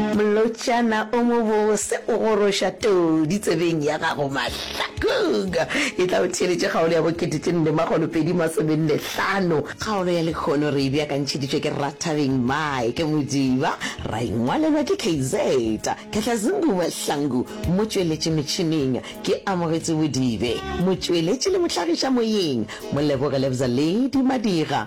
Molotšana o mobose o goroša todi tsebeng ya gago mahlakong. E tla o theeletše kgaolo ya bo kete tše nne makgolo pedi masome nne hlano. Kgaolo ya lekgono re e beakantšheditšwe ke Rra Thabeng Mike Modiba, ra e ngwalelwa ke KZ Kgatlazungu Mahlangu, motšweletši metšhineng ke Amogetso Bodibe, motšweletši le mohlagiša moyeng Moleboge Lebza Lady Madira,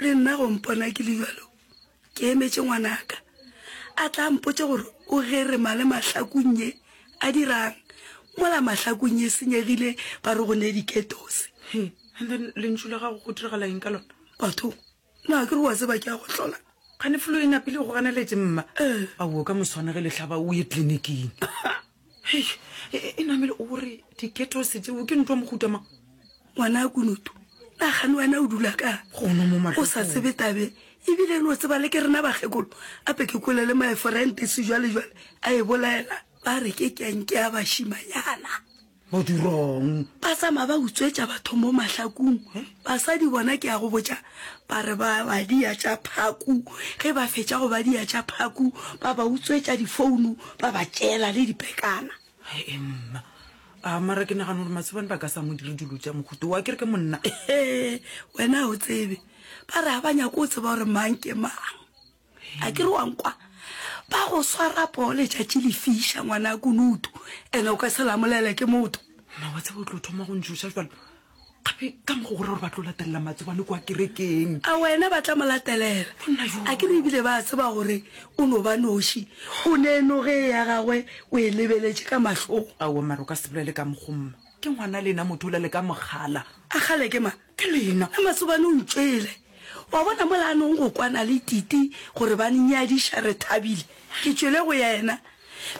Re nna go mpona ke le bjalo, ke emetše ngwanaka, a tla a mpotše gore o gerima le mahlakung nye, a dirang mola mahlakung e senyegile, ba re go ne diketose. He, and then lentšu la gago go diragala eng ka lona? Batho, na ke re wa tseba ke a go hlola. Kgane flu e napile go ganeletše mma? Ee. Awoo, ka moswane ge le hlaba o ye tliniking. Hei, e, e, e namele o re diketose tseo ke ntwa mohuta mang? Ngwana kunutu, nagane wena o dula ka Gono mo o sa mahlokong. tsebe tabe ebile no tseba le ke rena bakgekolo ape ke kole le my friend sejwalejwale a e bolaela ba re ke kenke ya bašimanyana Bo dirong. ba tsamaya ba utswetša batho mo mahlakong basadi bona ke ya go botša Ba re ba badia tša phaku, ge ba fetša go badia tša phaku, ba ba utswetša difounu, ba ba tšeela le dipekana. He mma, a mara ke nagana gore masobane ba ka sa mo dire dilo tša mohuto wa kere ke monna. He, wena o tsebe, ba re ga ba nyako o tseba gore mang ke mang. A ke re wa nkwa? Ba go swara poo letšatši le fiša, ngwana ya kunutu, ene o ka se lamolele ke motho. Mma wa tseba o tlo thoma go ntšhoša jalo. Gape ka mokgwa gore gore ba tlo latelela matsobane kwa kerekeng. A wena ba tla mo latelela? A ke re ebile ba tseba gore o no ba noši, o ne noge ya gagwe o e lebeletše ka mahlong. Aowa mara o ka se bolele ka mokgwa mma. Ke ngwana le ena motho o la le ka mogala. A kgale ke mang? Ke lena le masobane o ntšwele. Wa bona mola a nong go kwana le Titi gore ba nnyadiša re thabile. Ke tšwele go yena.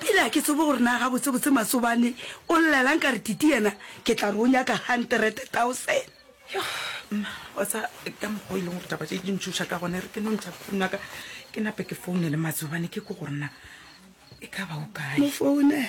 Bile ga ke tsebe gore na gabotsebotse masobane o llelang ka re Titi yena ke tla re o nyaka hundred thousand. Yoh mma wa tsa ka mokgwa o e leng gore taba tše di ntšhoša ka gona e re ke no ntšha phone wa ka ke nape ke founele matsobane ke ko gore na e ka ba o kae. Mo founela.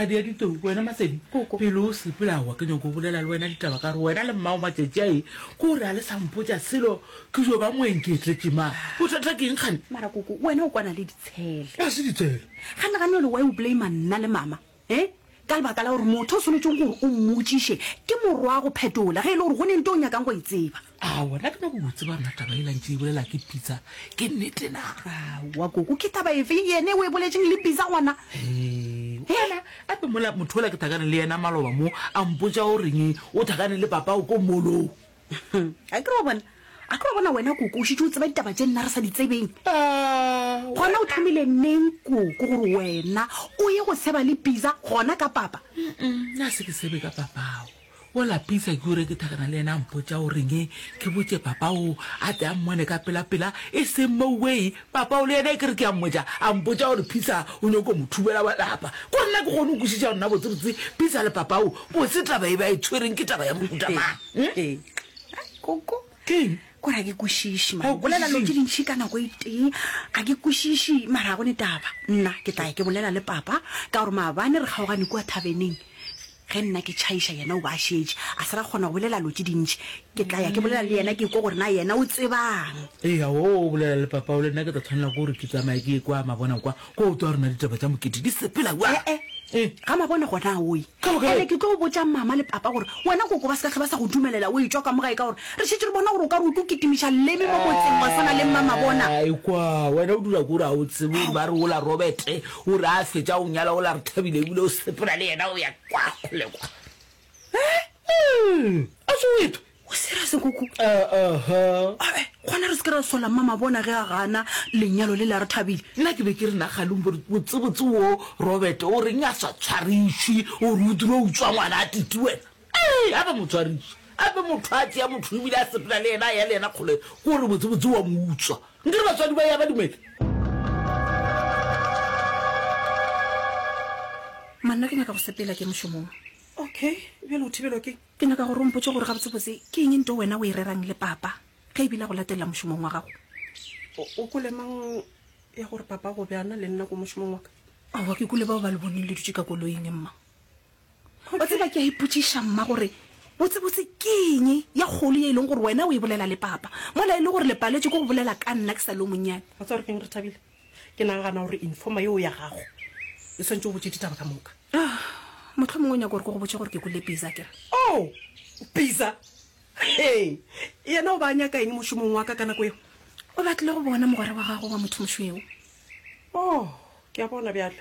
ga di ya ditou wena masedi pele o sepela wa ke nyoko o bolela le wena ditaba ka re wena le mmao matšatši ae ke o re a le sampotša selo ke jo ba moeng ke etletše ma bothata ke nkgane mara koko wena o kwana le ditshele ga se ditshele ga nagane le wa o blame nna le mama E, ka lebaka la gore motho o swanetšeng gore o mmotšiše ke morwago phetola ge e le gore go ne nto o nyakang go e tseba. Aowa, nna ke nyako go tseba mna taba e lantše e bolela ke pitsa ke nnete na. Aowa koko, ke taba efe yene o e boletšeng le pitsa gona? Ee, gona ape mola motho ola ke thakane le yena maloba mo a mpotša o reng o thakane le papao ko molong. a kere wa bona a kere wa bona wena koko o šitse o tseba ditaba tše nna re sa di tsebeng gona o thomile neng koko gore wena o ye go seba le pisa gona ka papa nna se ke sebe ka papao o lapisa ke ure ke thakana le ena a mpotsa o reng e ke botse papa o a te a mmone ka pelapela e seng mo way papa o le ena e kere ke a mmotsa a mpotsa gore phisa o nyoko mo thubela wa lapa ko nna ke kgone o kwešiša rona botsebotse phisa le papa o botse taba e ba e tshwereng ke taba ya mohutamang Hmm? Ee. Ai, koko keng ko ra ke kwešiše Ga o bolela lo kwešišeng? tse dintšhi ka nako e tee ga ke kwešiše mara ga go ne taba nna ke tla ya ke bolela le papa ka gore maabane re kgaogane kua thabeneng ge nna ke tšhaiša yena o ba a šetše a se ra kgona go bolela lo tse dintšhi ke tla ya ke bolela le yena ke kwa gore na yena o tsebang ee ga o bolela le papao le nna ke tla tshwanela ke gore ke tsamaya ke ye kwa mabona kwa kwa o twa rona ditaba tša mokete di sepela kwa ee ga mabone gona oye ande ke tlo go botša mama le papa gore wena koko ba se ka tlho ba sa go dumelela o etšwa ka mogae ka gore re šetše re bona gore o ka re o tlo kitimiša leme mo motseng wa swana le mama bona kwa wena o dula kore ga o tsebe gore ba re ola robert o re a fetša o nyala ola re thabile ebile o sepela le yena o ya kwa kgole kwa a se o eto O serious Nkuku? Uh-uh-huh. Eh, gona re se ke ra sola mma mabona ge a gana lenyalo le la re thabile. Nna ke be ke re na Galumbo botsebotse wo Robert o reng a sa tshwarišwi o re o dira o utswa ngwana a titi wena. Ee, a ba mo tshwariša. A be motho a tšea motho ebile a sepela le yena a ya le yena kgole ke gore botsebotse wa mo utswa. Nke re batswadi ba ya ba dumele. Manna ke nyaka go sepela ke mošomong. Okay, bjale o thibelwa ke. Ke nyaka gore o mpotše gore gabotsebotse ke eng nto wena o e rerang le papa ge e bile a go latelela mošomong wa gago. O kwele mang ya gore papa go bjana le nna ko mošomong wa ka? Aowa, ke kwele bao ba le boneng le dutše ka koloing, mma. Wa tseba, ke a ipotšiša, mma, gore botsebotse ke eng ye kgolo ye e leng gore wena o e bolela le papa mola e le gore le paletšwe ke go bolela ka nna ke sa le yo monnyane. Wa tseba gore ke eng, Rethabile? Ke nagana gore informa yeo ya gago e swantse o botse ditaba ka moka. Ah, motlho mongwe o nyaka gore ke go botse gore ke kule pizza kere. Oh, pizza. Hey, yena o ba nyaka eng mošomong wa ka ka nako eo? O batlile go bona mogwera wa gago wa motho mošweu. Oh, ke a bona bjalo.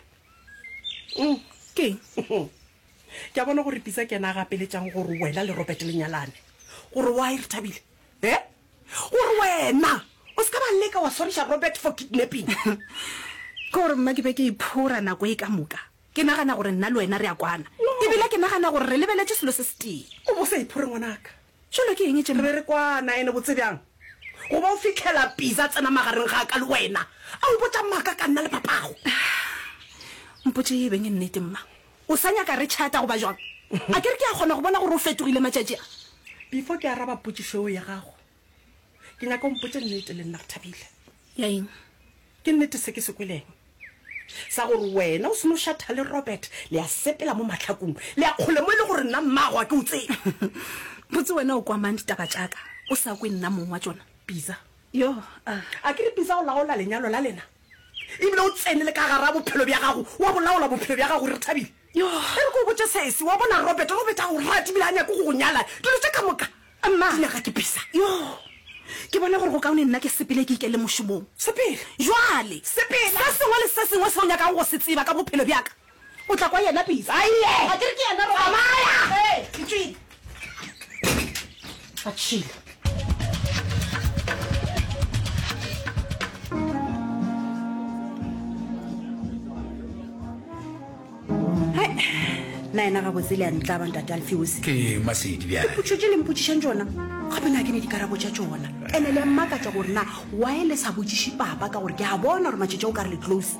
Mm. Ke eng? Ke a bona gore pizza ke yena a gapeletšang gore wena le Robert le nyalane. Gore why re thabile? Eh? Gore wena o se ka ba leka wa swariša Robert for kidnapping. Ke gore mma ke be ke iphora nako e ka moka. Ke nagana gore nna le wena re a kwana. E bile ke nagana gore re lebeletše selo se setee. O bo sa iphore ngwanaka. Tšelo ke eng tše mma? Re be re kwana ene botse bjang. Go ba o fihlela Piza tsena magareng ga ka le wena a mpotša maka ka nna le papago. Mpotše e beng e nnete mma. O sa nyaka re tšhata goba bjang? A ke re ke a kgona go bona gore o fetogile matšatši a. Before ke araba potšišo eo ya gago, ke nyaka o mpotše nnete le nna, Rethabile. Ya eng? Ke nnete se ke se kweleng sa gore wena o se no šatha le Robert, le a sepela mo mahlakong, le a kgole mo e le gore nna mmaago ga ke o tsebe? Botse wena o kwa mang ditaba tša ka o sa kwe nna mong wa tšona? Pitsa. Yoh, a. A ke re Pitsa o laola lenyalo la lena? Ebile o tsene le ka gara bophelo bja gago, wa bolaola bophelo bja gago, re thabile. E re ke go botše sese, wa bona Robert, Robert a go rata ebile a nyake go go nyala, dilo tše ka moka, di nyaka ke bisa. Ke bona gore go kaone nna ke sepele ke ikele mošomong. Sepela? Bjale, se sengwe le se sengwe se o nyakago go se tseba ka bophelo bja ka, O tla kwa yena bisa. A ye! A ke re ke yena Roy. Amaya! Ee, ke tšwile. A tšhile. na ena gabotse le a ntlaba ntate alfeose ke masedi bjale dipotso tše le mpotsišang tsona gape na ke ne dikarabo tša tsona ene le a mmakatša gore na wae le sa botsiše papa ka gore ke a bona gore matšetša o ka re le close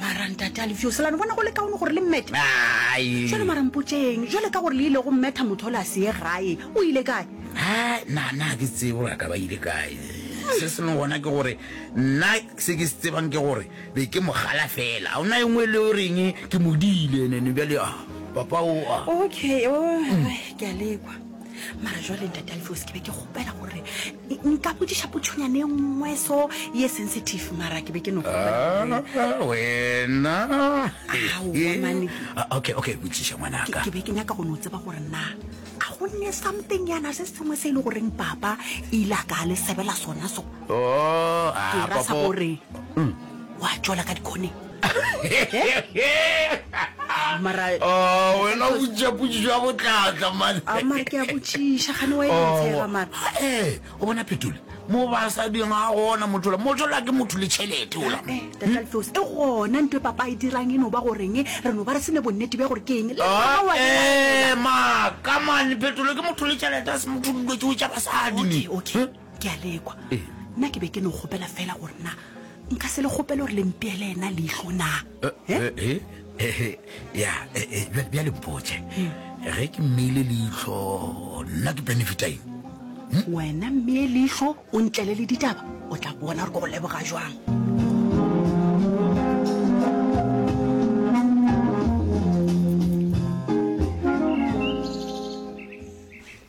mara ntate a lefio selano bona go le kaone gore le mmete Ai. jale mara mpotseng jale ka gore le ile go mmetha motho o le a seye gae o ile kae Ai, na na ke tsebe gore a ka ba ile kae se sengwe gona ke gore nna se ke se tsebang ke gore be ke mogala fela ga ona e nngwe e le o reng ke modile nene bjale a papa o a okay o ke a lekwa mara jwale ntate alfeos ke be ke kgopela gore nka bodiša potšhonyane nngwe so ye sensitive mara ke be ke no ah, wena ah, okay okay botšiša ngwanaka ke be ke nyaka go no tseba gore na a go nne something yana se sengwe se e le goreng papa e ile a ka le sebela sona so oh, ke rasa gore mm. wa tšwela ka dikgoneng mara Oh, wena o botšiša potšišo ya botlatla mane a mara ke a botšiša gane wa e ntshega mara Oh, eh, o bona phetole mo basadi ga gona mothola mothola ke motho le tšhelete ola Eh, tatalfeos e gona nto e papa e dirang e no ba goreng e re no ba re sene bonnete bja gore ke eng le Ah, mama wa e eh, ma kamane phetole ke motho le tšhelete a se motho dilo tšeo tša basadi ne Okay, okay. Eh? ke a lekwa Ee. nna ke be ke no kgopela fela gore na nka se le kgopele gore le mpeele ena leihlo na Eh? Eh, eh, eh, ya eh, eh, bja- bjale mpotše ge ke mmeile leihlo nna ke benefita eng wena mme leihlo o ntlele le ditaba o tla bona gore ko go leboga jwang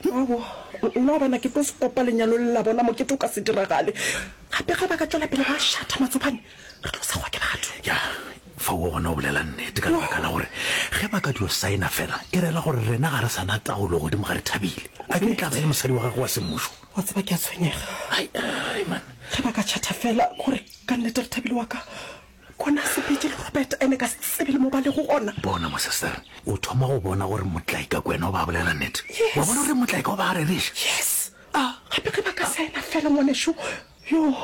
Aowa, nna wa bona ke tlo se kopa lenyalo le la bona, mokete o ka se diragale. Gape ge ba ka tšwela pele ba šatha matsopane, re tlo segwa ke batho. Ya, fao wa bona o bolela nnete ka lebaka la gore ge ba ka dio saena fela e rela gore rena ga re sa na taolo godimo ga Rethabile. A ke e tla ba e le mosadi wa gagwe wa semmušo? Wa tseba ke a tshwenyega. Ai, ai man. Ge ba ka chatha fela gore ka nnete Rethabile wa ka Gona se bitše le Robert ene ka se tsebe le mo ba lego gona. Bona mo sister, o thoma go bona gore Motlaika ko ena o ba bolela nnete. Yes. Wa bona gore Motlaika o ba a rereša. Yes. Ah. Gape ge ba ka sa ena fela ngwanešu. Yoo.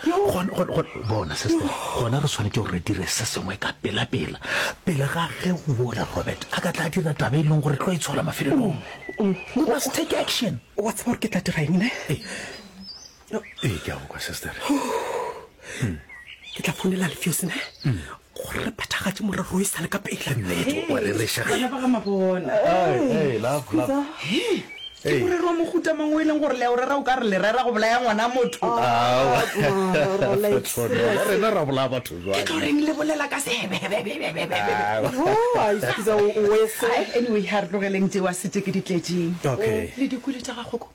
Gona, gona, gona, bona sister, gona re swanetše gore re dire se sengwe ka pela pela, pele ga ge wola Robert a ka tla dira taba e leng gore tlo e tshola mafelelong. We must take action. Wa tseba gore ke tla dira eng ne? ee ke a go kwa sister hmm. ke tla founela lefeosene hmm. gore re phethagatse morero o e sale ka pelemorero wa mohuta mang o e leng gore leo rera o ka re lerera go bolaya ngwana motho ah, rena ra bolaya batho jwake tlo reng le bolela ka sebebebebebebeanyway ga re tlogeleng tsewa setse ke ditletseng le dikole tsa gagoko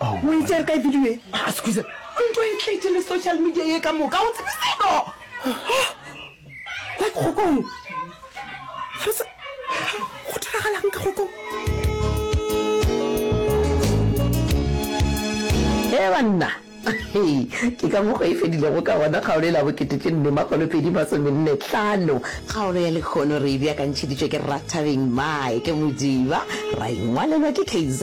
O itse re kae video e? Ah, scusa. O nto e tletse le social media ye ka moka. O tsebe seno. Like kgokong. Re se go diragalang ka kgokong? He banna. Ke ka mokgwa e fedilego ka gona kgaolo e la bokete tše nne makgolo pedi masomenne tlhano. Kgaolo ya lekgono re e beakantšheditšwe ke Rathabeng Mae ke Modiba, ra e ngwalelwa ke KZ.